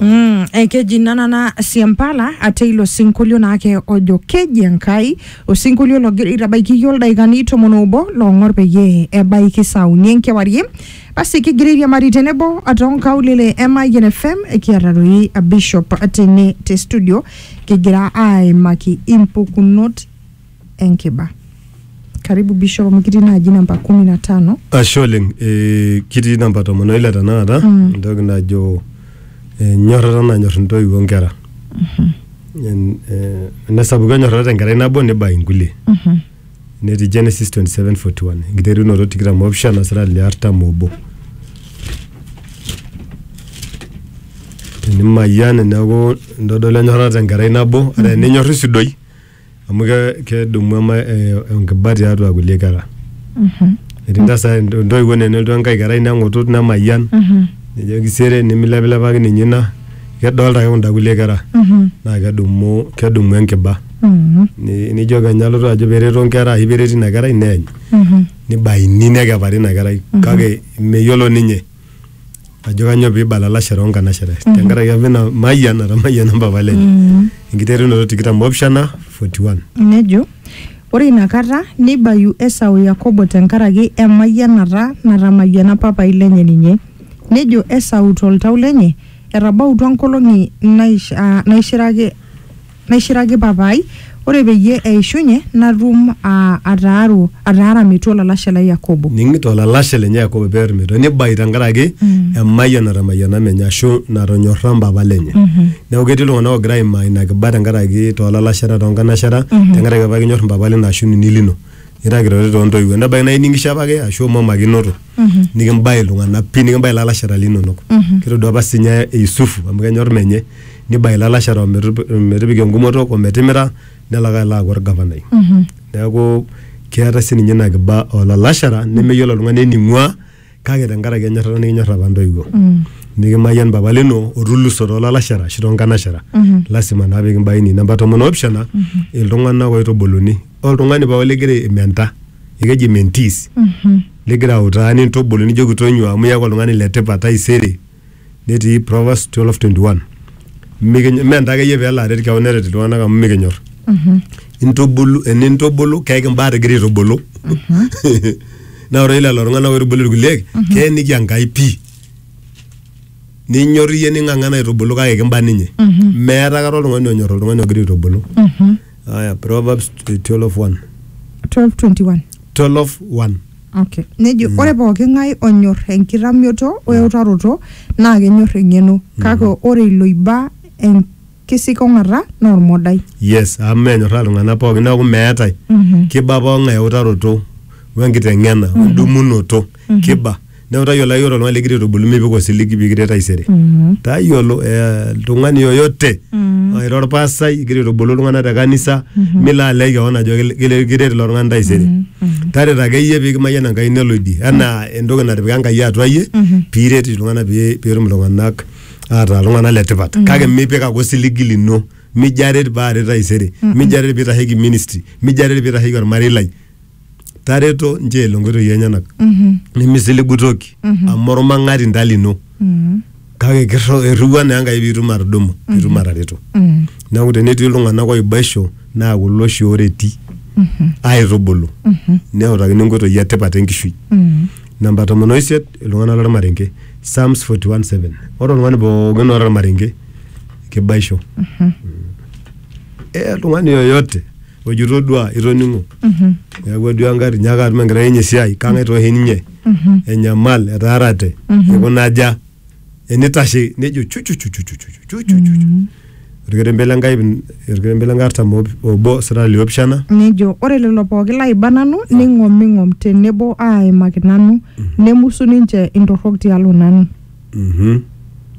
Mm, eh, keji nanana siampala ate ilo sinkolio naake ojo keji enkai osinkolio logira aitabaiki iyie oldaikani tomon obo loong'or peyie ebaiki saa uni enkewarie basi kigira airiamari tenebo atoonkaulele e Mayian FM kiata doi Bishop tene te studio kigira aimaki impukunot enkiba. Karibu Bishop amu kitii naaji namba kumi na tano. Ashe oleng eh, kitii namba tomon oile tenakata Mm. entoki najo eh, nyorrata nanyorr intoiwuo onkera En- eh, enesapuku enyorrata tenkerai nabo nibai inkulie Mhm. netii Genesis 27:41 enkiterunoto tikitam opishana sirali le artam obo tenimayian neeku intodolu enyorrata tenkerai nabo ata eninyorr isudoi amu ke- kedumu ema eh, enkiba tiatua kulie kera etii ntasa intoiwuo nenelotu enkae kerai neng'utut nemayian nejo kisere nimilepilepaki ninye ina kedolta ake kunda kulie kera naa kedumu kedumu enkiba Ni- nijo kenya alotu ajo pereto nkera ashu pereti ina kerai neeny nibaini nekepari ina kerai kake meyiolo ninye ajo kanyoo peibala lashere onkanashere tenkaraki apa ina mayian natamayiana mpapa lenye enkiterunoto tikitam opishana 41 Nejo, ore inakata neibayu Esau Yakobo tenkaraki emayianata natamayiana papai lenye ninye. Nejo Esau toltau lenye, Etabautua nkolong'i naish, aa, naishiraki Naishiraki Papa ai, ore peyie eishunye natum aa, ataaru, ataara metua olalashe lai Yakobo. Ning'ito olalashe lenye Yakobo pear metua, neibayu tenkaraki emayian natamayiana menye ashu natonyorra mpapa lenye. Neeku ketii iltung'ana oogira aimaa ina kiba tenkaraki too lalashera, too nkanashera, tenkaraki apa kinyorr mpapa lino ashu nini lino. Nira kitoioi too ntoiwuo. Nebaiki naa ining'isho apake ashu imomakinoto. nikimbae iltung'anak pii nikimbae ilalashera linonok kitodua apa sinye Yusufu amu kenyor menye nibae ilalashera ometup- ometipika engumoto ometimira nelo ake alo aaku orgavanai neeku keetae sininye ina kiba olalashera nemeyiolo oltung'ani ening'ua kake tenkaraki enyorrata nikinyorr apa intoiwuo nikimayian papa lino otuluso toolalashera ashu toonkanashera lasima naa pikimbaini namba tomon oopishana iltung'anak oitubuluni oltung'ani pooki ligira aimenta ekeji mentees ligira autaa nintubulu nijoki tonyua amu iyaku oltung'ani letipat taisere netii Proverbs 12:21 Mikinyo- mme ntae akeyie peelo aret kewon neret iltung'anak amu mikinyor intubulu enintubulu keeki imbaa tigira aitubulu naa ore lelo tung'anak oitubulu irkuliek keeniki Enkai pii ninyor iyie ning'ang'ana aitubulu kake kimba ninye meeta kata oltung'ani onyor oltung'ani ogira aitubulu Haya, Proverbs 12:1. 12:21 12:1. okay nejo ore pooki ng'ae onyor enkitamioto weutaroto naa kenyor eng'eno kake ore iloiba enkisikong'ata naa ormodai Yes, amu menyorraa iltung'anak pookin neeku meetae kiba pooki ng'ae eutaroto wenkiteng'ena wedumunoto. kiba neeku tayiolo ake ore oltung'ani likigira aitubulu mipik osiligi pikiret taisere tayiolo eh, oltung'ani yoyote ira orpasai igira aitubulu iltung'anak te kanisa milo alej kewon ajo kil- kil- kiret ilo tung'ani taisere tareto akeyie pikimayian Enkai nelo idie enaa entoki natipika Enkai atua iyie piret iltung'anak pi- pitum iltung'anak ataa iltung'anak letipat kake mipik ake osiligi lino mijo aret paaret taisere mijo aret pitasheki ministry mijo aret pitasheki ormarei lai tareto nchoo elo nkoitoi enyenak Mhm. nemisiligu toki Mhm. amu ormang'ati nta lino Mhm. kake kirro- irriwua naa enkai piitum atudumu piitum atareto Mhm. neeku tenetii iltung'anak oibaisho naa kulo oshi ooreti Mhm. aitubulu Mhm. neutakini nkoitoi etipat enkishui Mhm. namba tomon oisiet iltung'anak lormarenge psalms 41:7 ore oltung'ani pookin oota ormarenge kibaisho Mhm. eh, oltung'ani yoyote ojo itodua itoning'o neeku aduaa engari nyaaka atum enkerai enye esiai kang'ae tooshi ninye enyamal etaarate ikuna aja enitashe nejo chuchuchuchuchuchuchuchuchu orkerembe le Nkai orkerembe le Nkai artam ob- obo sirata liopishana nejo ore lelo pooki laiba nanu neing'oming'om tenebo aaimaki nanu nemusu ninche intorrok tialo nanu Mhm.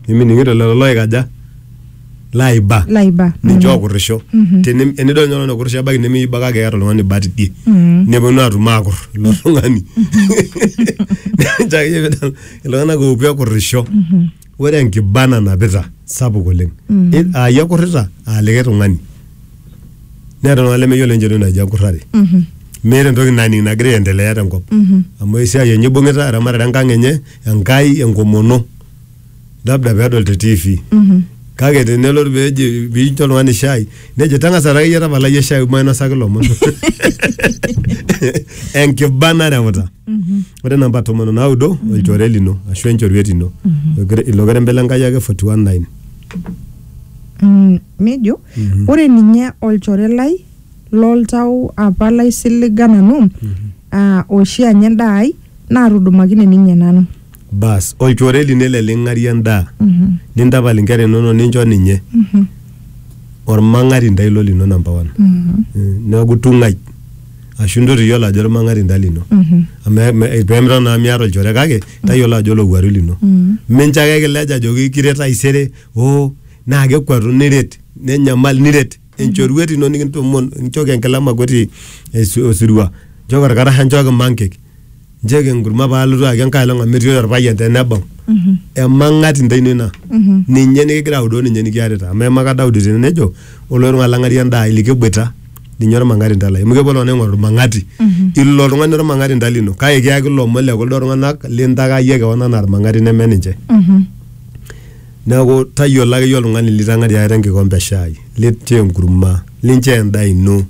nimining'ito lelo loikaja laiba laiba ninche ookurrisho Teni- enidol ninye oltung'ani okurrisho ebaiki nemeiba kake eeta oltung'ani bat idie neponu atum aakur ilo tung'ani Ninche akeyie pidol iltung'anak oopuo ekurrisho ore enkiba nanapita sapuk oleng I- aa iyie ekurrita aa likae tung'ani neeta iltung'anak lemeyiolo ninche entoki naji enkurrare meeta entoki naning nagira aendelea tenkop amu esiai enye ibung'ita eramatare enkang enye Enkai enkomono labda pedol te TV Mhm. kake tenelo peji pincho oltung'ani shai nejo tang'asa taa akeyie tapala iyie shai mainosaki lomon enkiba naremuta ore namba tomon onaudo olchore lino ashu enchoruet ino Okere- ilo kerembe le Nkai ake 419 Mm, nejo ore ninye olchore lai L'oltau apa laisiliga nanu, aa oshi anya endaa ai, naatudumakine ninye nanu. Baas, olchore lino ele ling'arie endaa, nintapal inkera inono nincho ninye, olmang'atinda ilo lino number one. Neaku tung'ai ashu intotiyiolo ajo olmang'atinda lino. Amu me- pee midol naa amu miata olchore kake tayiolo ajo olowuaru lino. Mincho ake ekilej ajoki kiret taisere, oo naa kekuatu niret, nenyamal niret. enchoruet ino nikintomon nchooki enkila makoti esi- osirua nchooki orkarasha nchooki mankek nchooki enkurma paalotu ayaki enkae olong amu metii orpayian tenebau emang'ati ntae ino ina ninye nikigira audoo ninye nikiarita amu eimaka Daudi tene nejo ore ele tung'ani lang'arie endaa ai likeboita ninye ormang'ati ntae lai amu kepuo iltung'anak aing'oru ormang'ati ilo oltung'ani ormang'ati ntae lino kake kiyaki ilomon le kuldo tung'anak lintakayie kewon anaa irmang'ati neme ninche Neaku, tayiolo ake iyie oltung'ani litang'ariaka te nkikompe e shaai, linchoo enkurma, linchoo endaa ino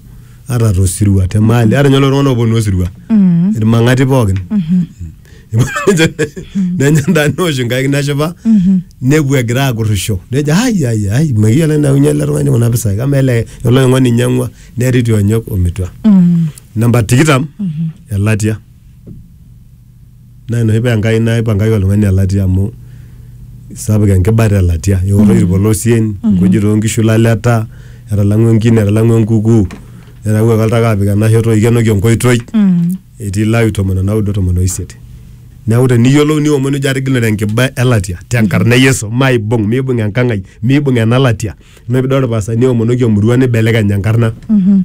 ata to sirua, te maali. Ata ninye lelo tung'ana ooponu osirua, ilmang'ati pooki, eponu ninche nenya endaa neosh inkaik neshipa, nepuo egira aakurrisho. Nejo ai ai ai mekiyiolo enayaunyie ele tung'ani kuna pisai. Kamaa ele oinyang'ua einyang'ua netii ti onyok o mitua. Namba tikitam, elatia. naa enoshi paa Enkai naipangaki oltung'ani elatia amu sapuk enkibata elatia eoto irpolosien nkujit oonkishu ilaleta etalang'ua enkine etalang'ua enkuku netawuoki oltaka apik ena shoto eikenoki enkoitoi Mm. etii Lawi tomon onaudo tomon oisiet neeku teniyiolou niomon nijo atigilunore enkiba elatia tenkarna e Yesu maibung miibung enkang ai miibung ena latia ina piidol irpastani oomonoki emurua nibelekeny enkarna Mhm.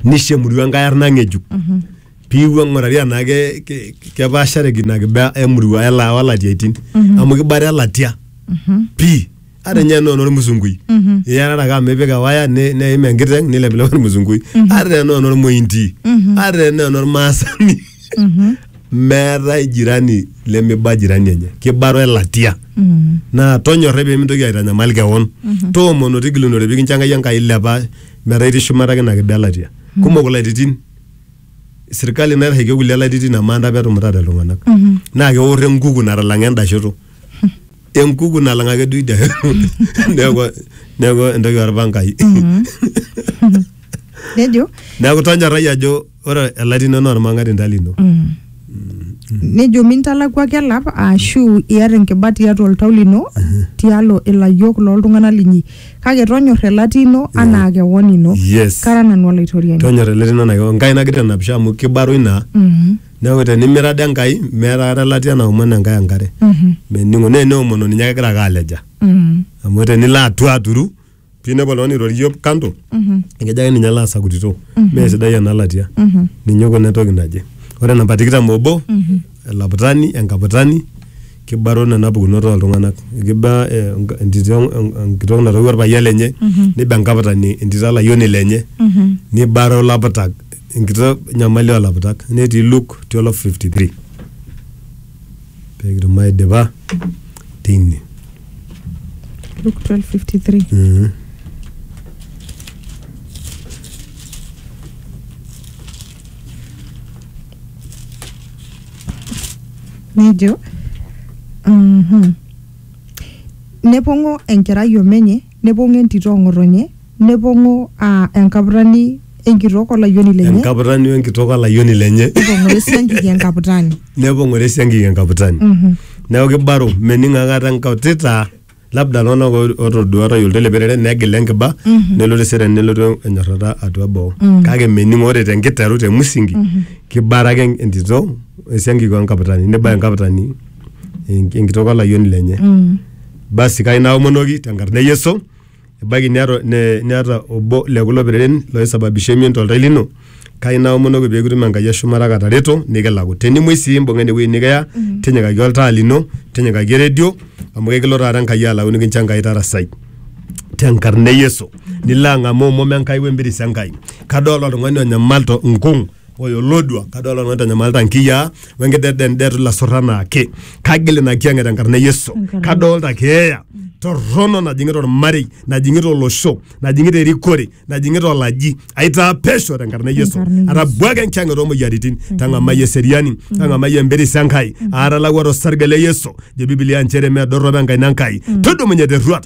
nisho emurua enkae arna ng'ejuk piiwuo ng'urari anaa ke, ke, kepaashareki ina kiba emurua ela olatiaitin mm-hmm. amu kibara elatia mm-hmm. pii ata ninye enaa enormusungui mm-hmm. iyarara ake amu ipik ewaya ne- neim enkiteng nilepilep ormusungui mm-hmm. ata enaa enormointi mm-hmm. ata enaa enormaasani mm-hmm. meetae jirani lemiba jirani enye kibaro elatia mm-hmm. naa tonyorrai pemintoki aitanyamal kewon mm-hmm. toomono tigilunore pikincho enkai enkai ilepa metaa itii shumata ake ina kiba elatia mm-hmm. kumok ilaititin sirkali naitasheki kulie laititin amaa ntae petumutate iltung'anak naa keor enkuku natalang'a enda shoto enkuku nalang ake duo idia shoto neeku neeku entoki orpangai nejo neeku tonyorrai ajo ore elaitinoni naa ormang'atinda lino Nejo mintalakuaki elap aashu iata enkiba tiatua oltau lino tialo ilayiok loo ltung'ana linyi, kake tonyorra elatia ino anaa kewon ino. Yes. Kara nanu Olaitoriani. Tonyorra elatia ino anaa kewon. Enkai nagira aitanapisho amu kibaroi naa. Neaku tenimira de Enkai meeta aikata elatia naomon Enkai enkare. Mening'o. Naa eneomono ninye kegira ake aleja. Amu tenilo atua aturu pinepu oltung'ani airorie kando ekejo ake ninye laasa kutito mee sidai ena latia ninye oikuna entoki naje ore namba tikitam obo elaputani enkaputani kibaro nena pukunot oltung'anak kiba eh, enk- entito en- enkitok natoiwuo orpayian lenye niba enkaputani entito olayioni lenye nibaro ilaputak enkitok nyamali olaputak netii Luke 12:53 pekitum aidipa tine Luke 12:53. Mhm. nejo mhm, nepong'o enkerai omenye Nepong'o entito o ng'otonye, nepong'o aa enkaputani enkitok o layioni lenye, enkaputani o enkitok o layioni lenye nepong'ore esiankiki enkaputani. nepong'ore esiankiki enkaputani neeku kibaro mening akata enkautita labda iltung'anak oo- otoduaa otayiolo teleperere negila enkiba nelotu eseriani nelotu enyorrata atua boo kake mening ore tenkiteru te musingi kibara ake entito esiankiki o enkaputani nibaya enkaputani enk- enkitok o layioni lenye Basi kai naomonoki tenkarna e Yesu, ebaiki niata, ne, niata obo le kulo pereren loisababisha emion toltau lino, kai naomonoki pee kitum Enkai e shumata katareto nikilaku. Tenimuoi sii imbung'a ene wueji nikiya, tinyikaki oltaa lino, tinyikaki eredio, amu kekilo taata Enkai alau nikincho Enkai tarasai tenkarna e Yesu. Nilo ang'amu omom e Nkai we mpiris e Nkai. Kadolta oltung'ani onyamal to nkung'. ore olodua kadolta nanu itanyamalita nkiyiaa wenkidedended ilasurra anaake kagil ina kiyang'et tenkarna e yesu Enkarna- kadolta keeya torrono najing'ita ormarei najing'ita olosho najing'ita erikore najing'ita olaji aitaa pesho tenkarna e yesu Tenkarna e Yesu. atabwaka enkiyang'et oomoyiaritin tang'amai eseriani tang'amai empiris enkai aatalawua tosarge le yesu jo bibilia nchere medorropo enkaina enkai tudumunye terruat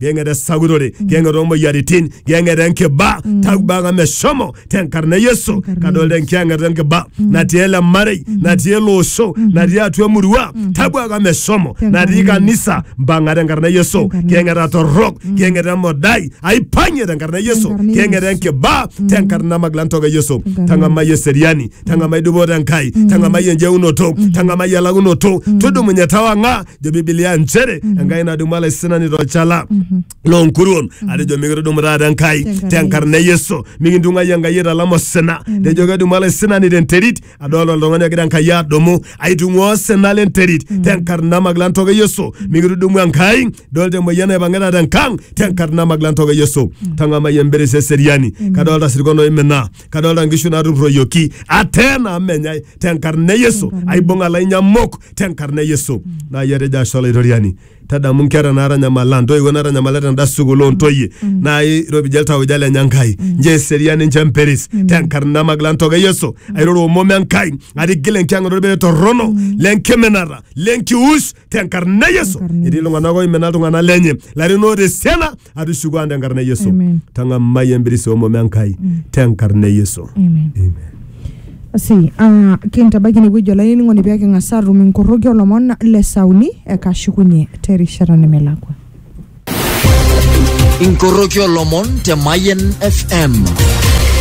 geng'era sagurore geng'era omoyiaritin geng'era enkiba tagbaka meshomo tenkarna yesu Tenkarna kadolta Yesu. enkiyang'ata enkiba natii ele marei natii ele osho natii atua emurua tabuaka meshomo Tenkarna natii Yesu. kanisa mpang'a tenkarna yesu Tenkarna geng'era torrok geng'era emodai aipang'ie tenkarna yesu Tenkarna geng'era Yesu. enkiba tenkarna maglantoka yesu Tenkarna tang'amai eseriani tang'amai dupoto enkai tang'amai enjeunoto tang'amai elakunoto tudumunye tawang'a jo bibilia nchere enkai nadumu alaisinani tolchala loonkuruon atejo mikidumu taata enkai Tenkarna tenkarna e yesu mikintung'ai enkai italam osina tejo kedumu alaisinani tenterit adolta oltung'ani ogira enkai adumu aitung'ua osina lenterit tenkarna magila ntoka e yesu mikitudumu enkai dolta emoyian naipang'ita tenkang tenkarna magila ntoka e yesu tang'amai emberes eseriani kadolta sirkon oimina kadolta nkishu natupurroyioki atena amu menyai tenkarna Yesu Tenkarna. aibung'a lainyamok tenkarna Yesu naa iyie etejo ashe olaitoriani tadamu nkera naatanyamala ntoiwuo naatanyamalita tenda sukuul oontoyie naa iropija iltauja lenye Enkai nchoo eseriani nchoo empiris tenkarna magila ntoka e Yesu airoro omom Enkai atigil enkiang'ata olbere torrono lenkiminata lenkiush tenkarna yesu Tenkarna etii Yesu. iltung'anak oimina iltung'anak lenye larin oota esiana atushuku ang tenkarna yesu Amen. tang'amai embirisi omom enkai tenkarna yesu Amen. Amen. si ah, kintabaiki inewueji olainining'oni pee king'as aatum inkorroki olomon le sauni ekashukunye terishata nemelakwa Inkoroki olomon te Mayen FM.